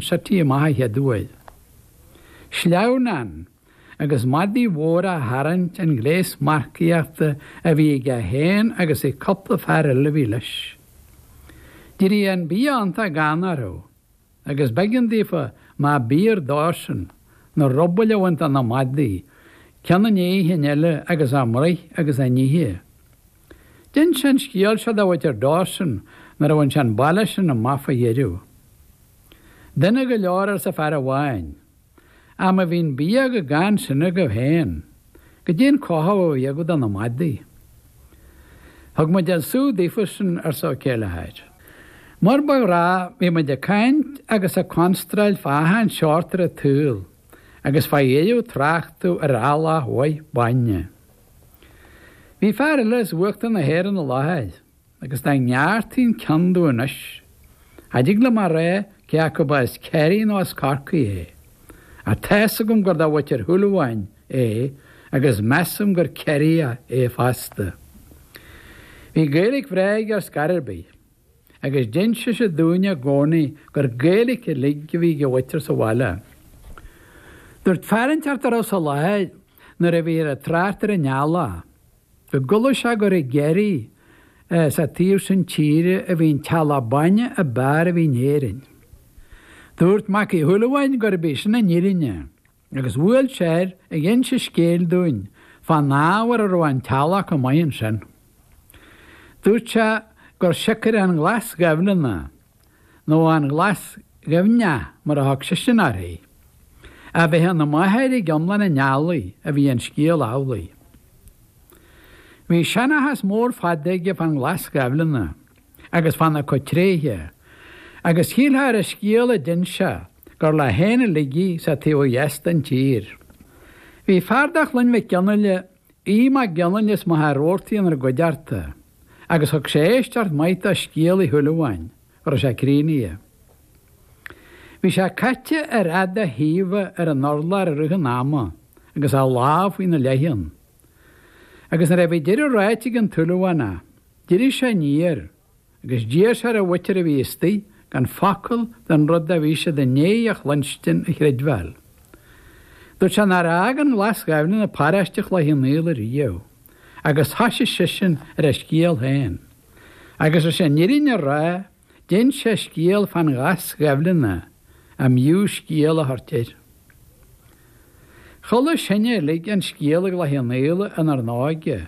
sa taobh ó thuaidh dúinn. Sleamhnán agus madaidh mhóra á tharraingt an gléas marcaíochta a bhí aige féin agus ag cupla fear eile a bhí leis. D'éirigh an bia iontach gann orthu, agus b'éigean daofa má b'fhíor dósan, na rubaill a bhaint de na madaidh, ceann i ndiaidh an chinn eile agus a mbruith agus a n-ithe. D'ins sé an scéal seo do mhuintir Dawson nuair a bhain sé an baile sin amach fá dheireadh. Dona go leor arsa fear amháin. Ach má bhí an bia chomh gann sin agaibh féin, goidé an cothú a bhí agaibh do na madaidh. Thug muid an sú daofa sin arsa Ó Céileachair. Mar ba ghnách bhí muid ag caint agus ag constráil fá achan seort ar an tsaol agus fá dheireadh tráchtadh ar eallach maith bainne. Bhí fear eile as uachtar na hÉireann i láthair agus dá ngearrtaí an ceann díom anois, cha dtig liom a rá cé acu ba as Ciarraí nó as Corcaigh é. Ach tá's agam gur de mhuintir Shúilleabháin é agus measaim gur Ciarraíoch é fosta. Bhí Gaeilic bhreá aige ar scor ar bith. agus d'inseadh sé dúinn i gcónaí gur Gaeilic uilig a bhí ag a mhuintir sa bhaile. Dúirt fear inteacht dá raibh sa láthair nuair a bhíthear ag trácht ar an eallach, go gcuala sé gur i gCiarraí, sa taobh sin tíre, a bhí an t-eallach bainne a b'fhearr a bhí in Éirinn. Dúirt Mac Uí Shúilleabháin gurbh í sin an fhírinne. agus bhuail sé air ag inse scéil dúinn fán ábhar a raibh an t-eallach chomh maith ansin. Dúirt sé gur siocair an Ghlas Ghaibhleanna, nó an Ghlas Ghaibhne mar a thug seisean uirthi, a bheith ina máthair ag iomlán an eallaigh a bhí an scéal amhlaidh. Bhí seanchas mór fada aige fán Ghlas Ghaibhleanna. agus fána cuid tréithe, agus shílfeá ar an scéal a d'ins sé gur leo féin uilig í sa taobh ó dheas den tír. Bhí fear de Chloinn Mhig Fhionnghaile, Aodh Mag Fhionnghaile as Machaire Rabhartaigh inár gcuideachta, agus thug sé éisteacht maith do scéal Uí Shúilleabháin, go raibh sé críochnaithe. Bhí sé caite ar fhad a thaoibhe ar an urlár i rith an ama agus a lámh faoina leiceann. Agus nuair a bhí deireadh ráite ag an tSúilleabhánach, D'éirigh sé aniar, agus d'iarr sé ar an mhuintir a bhí istigh gan focal den rud a bhí siad i ndéidh a chluinstin a chreidbheáil. Dúirt sé nár fhág an Ghlas Ghaibhleanna paróiste Chloich Cheann Fhaola ariamh, agus thoisigh seisean ar a scéal féin. Agus leis an fhirinne a rá, d'ins sé scéal fán Ghlas Ghaibhleanna arbh fhiú scéal a thabhairt air. Chuala sinne uilig an scéal i gCloich Cheann Fhaola inár n-óige,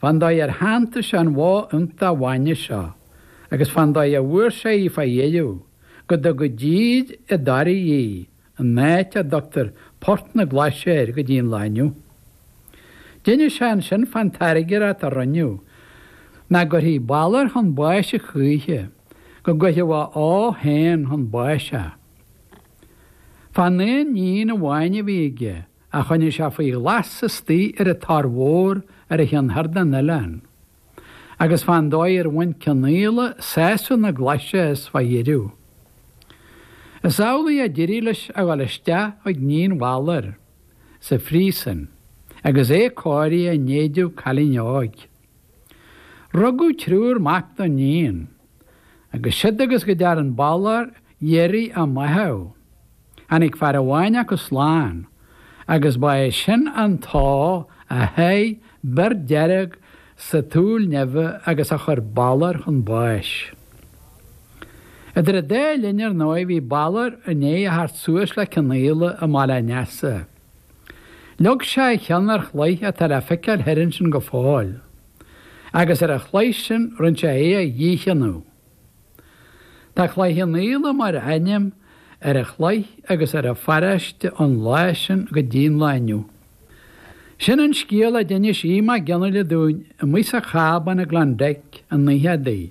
Fán dóigh ar shantaigh sé an bhó iontach bhainne seo, agus fán dóigh a bhfuair sé í fá dheireadh, go dtug i dtír i dToraí í, an áit a dtugtar Port na Glaise air go dtí'n lá inniu. D'innis sé annsin fán tairngreacht a rinneadh nach gcuirfí Balor chun báis a choíche, go gcuirfeadh a ó féin chun báis é, fán aon níon amháin a bhí aige. a choinnigh sé faoi ghlas istigh ar an Tor Mhór ar an cheann thoir den oileán, agus fán dóigh ar bhain Cionnaola sásamh na glaise as fá dheireadh. Is amhlaidh a d'éirigh leis a dhul isteach chuig níon Bhaloir sa phríosúin agus é cóirithe in éideadh cailín óig. Rugadh triúr mac don níon, agus siúd agus go dtearn Balor iarraidh a mbáthadh. Tháinig fear amháin acu slán agus ba é sin an t-ó a sháigh bior dearg sa tsúil nimhe agus a chuir Balor chun báis. Idir an dá linn, ar ndóigh, bhí Balor i ndiaidh a theacht suas le Cionnaola i mBaile an Easa. Leag sé a cheann ar chloich atá le feiceáil thoir ansin go fóill, agus ar an chloich sin rinne sé é a dhícheannadh. Tá Cloich Chionnaola mar ainm ar an chloich agus ar an pharáiste ón lá sin go dtí an lá inniu. Sin an scéal a d'inis Aodh Mac Fhionnghaile dúinn amuigh sa chábán i gClann Mheic i ndaicheadaí.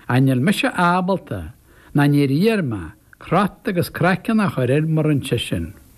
Ach níl mise ábalta, ná níor iarr mé, cruth agus craiceann a chur air mar a rinne seisean.